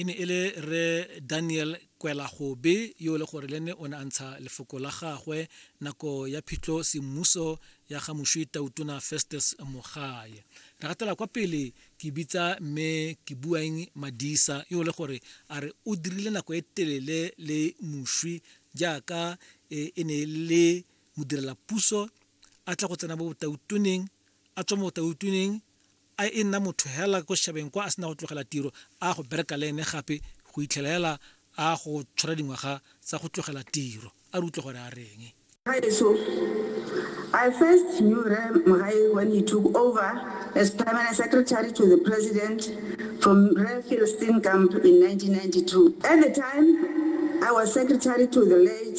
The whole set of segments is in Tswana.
E ne e le Rre Daniel Kwelagobe yo e le gore le ne o ne a ntsha lefoko la gagwe nako ya phitlho semmuso ya ga Mošwi Tautona Festus Mogae. Re gatela kwa pele ke bitsa mme ke buang Madisa yo e le gore a re o dirile nako e telele le Mošwi jaaka e, e ne e le modirela puso a tla go tsena mo botautoneng a tswa mo botautoneng a e nna motho hela ko shabeng kwa a sena go tlogela tiro a go bereka le ene gape go itlhela hela a go tshwara dingwaga tsa go tlogela tiro a re utlwe gore a reng. Gaetsho, I first knew Rre Mogae when he took over as Permanent Secretary to the President from Rre Phil Steenkamp in 1992. At the time, I was secretary to the late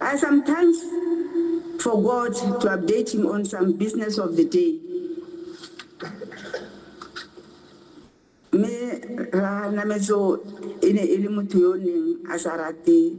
I sometimes forgot to update him on some business of the day. Me ra nametso e ne e le motho yo neng a sa rate